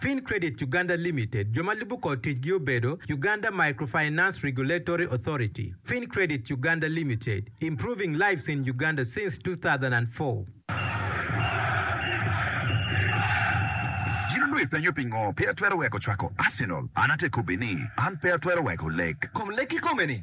Fin Credit Uganda Limited, jo ma lubo kor ticgi obedo, Uganda Microfinance Regulatory Authority, Fin Credit Uganda Limited, Improving Lives in Uganda since 2004. In onongo ipenyo pingo pe atwero weko cwako Arsenal? An atekobbi ni, an pe atwero weko lek. Kom lek kikome ni,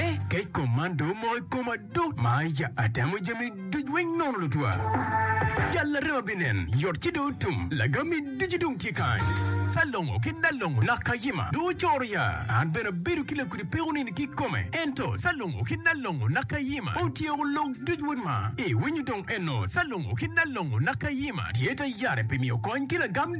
Eh, kec kom man do mo i koma do ma ya atemo jami duc weng nono lutwa. Jal larema binen, yot ci do tum, lagami ducu dong tye kany. Salongo ki Nalongo nak kayima do ocoro ya, an bene abedo ki lakudi peko nini ki kome. Ento Salongo ki Nalongo nak kayima otyeko lok duc wun ma iwinyo dong eno Salongo ki Nalongo nak kayima tye ta yare pi miyo kony ki lagam